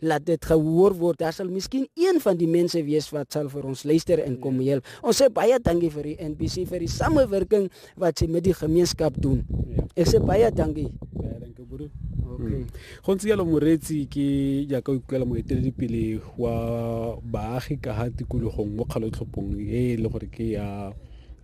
laat dit gehoor word. Daar sal miskien een van die mense wees wat sal vir ons luister en kom ja. help. Ons sê baie dankie vir die NBC vir die samewerking wat sy met die gemeenskap doen. Ja. Ek sê baie dankie. Baie dankie broer. Okay. Hmm. Go ntse jalo moretsi ke jaaka o ikutlwela moeteledipele wa baagi ka ga tikologong mo kgalotlhopong e e le gore ke ya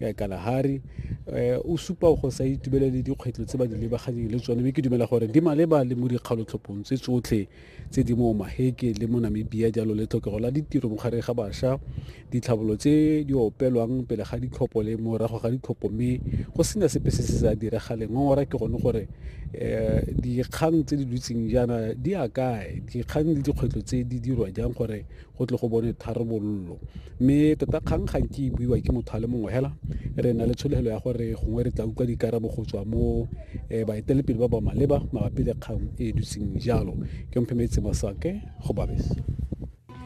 ya kalahari um eh, o supa go sa itubelele dikgwetlho tse ba di lebaganeng le tsone mme ke dumela gore di maleba le mo dikgalotlhophong tse tsotlhe tse di mo Maheke le mo Namibia jalo le tlhokego la ditiro mo gare ga basha, ditlhabolo tse di opelwang pele ga ditlhopho le morago ga ditlhopho mme go sena sepe se se sa diragale. Ngongora ke gone gore um dikgang tse di dutseng jaana di a kae, dikgang le dikgwetlho tse di dirwa jang gore go tle go bone tharabololo mme tota kgang ga nke e buiwa ke motho a le mongwe fela re na le tshologelo ya gore gongwe re tla utlwa dikarabo go tswa mo um eh, baetelepele ba ba maleba mabapi le kgang e e dutseng jalo ke mphemetse masake go babese